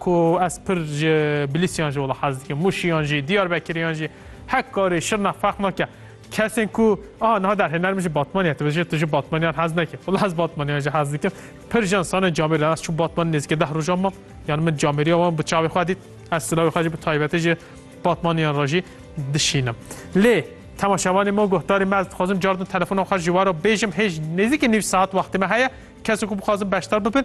Ku ez pir ji Bilîsyan jî wela hez dikim, Mûşiyan jî, Diyarbekiriyan jî, Hekkarî, Şirnex ferq nake. Kesên ku a niha derhêner min ji Batmanê dibêje tu ji Batmaniyan hez nekî. Wela ez Batmaniyan jî hez dikim. Pir jin sanên camêrî re ez çûm Batmanê nêzîkê deh rojan mam. Yan min camêrîya wan bi çavê xwe dît. Ez silavê xwe jî bi taybetî ji Batmaniyan re jî dişînim. Lê temaşevanê me û guhdarê me ez dixwazim cardin telefona xwe ji we re bêjim hêj nêzîkî nîv saet wextê me heye. Kesên ku bixwazin beşdar bibin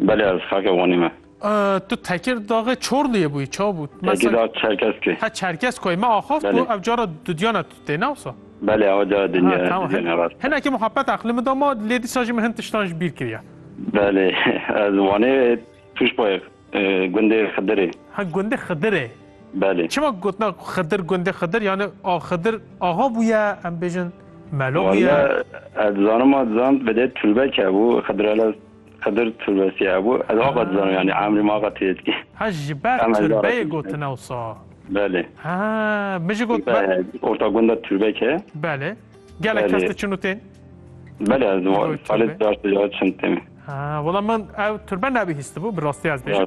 Belê ez xake Wanê me. Tu Tekir daxê Çorluyê bûyî ça bû? Tekir dax Çerkeskê. Ha Çerkeskoyê me axaft ku ev cara dudyana tu tê ne wisa? Belê ew cara dinya dudyana rast e. Hinekî muhabbet eqlê min da ma lê dîsa jî min hin tiştan ji bîr kiriye. Belê ez Wanê Tûşbayê gundê Xidirê. Ha gundê Xidirê. Belê. Çima gotina Xidir gundê Xidir yanî a Xidir axa bûye em bêjin melo bûye? Walla ez dizanim a dizan vedê Tulbek hebû Xidirelez. Xedir Turbesiye hebû. Ez ava dizanim yanî emrê min ava tê dikê. Ha ji ber turbeyê gotin ewsa. Belê. Ha min jî got. Orta gunda turbek heye. Belê. Gelek kes diçin û tên? Belê ez salê caşt caşt diçin tên. Ha wala min ew turbe nebihîstibû bi rastî ez bêjim.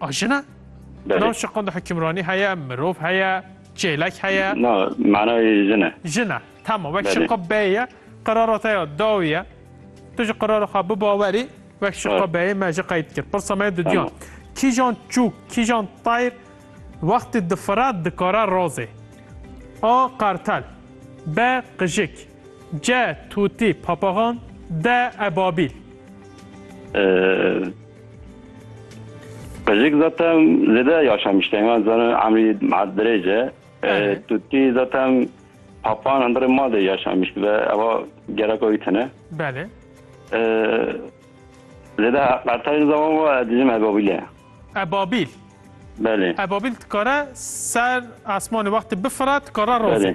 A jina? Belê. Nav şiqon de hukimranî heye, mirov heye, çêlek heye. Na, manayê jin e. Jin e. Tamam, wek Belê. şiqo bey ye, qirara te ya daw ye. Tu ji qirara xwe bibawerî, wek şiqo Evet. beyê me ji qeyd kir. Pirsa me ye dudiyan. Tamam. Kîjan çûk, kîjan tayr wextê difira dikare razê? A. Qartel B. Qijik Ce, tûtî, papaxan, de, ebabîl. Qijik zaten zêde yaşamıştı. Hemen zaten emri dirêce. Tûtî zaten papan hundirê ma de yaşamıştı ve eva gereka wî tine. Belê. Zêde qertayê zaman ve dijim ebabîle. Ebabîl. Belê. Ebabîl dikare ser esmanê wextê bifire dikare razê.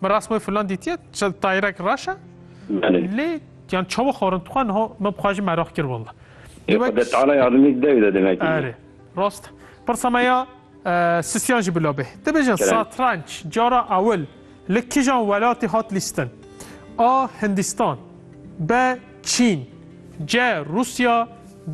Min rast wê filan dîtiye, çi tayirek reş e. Belê. Lê yan çawa xwarin dixwe niha me bi xwe jî meraq kir walla. Lê wek Xwedê teala yardimê dide wî de demekî. Erê. Rast e. Pirsa me ya Sisiyan jî bila bê. Dibêjin Kerem. satranç cara ewil li kijan welatê hat lîstin? A. Hindistan B. Çîn C. Rusya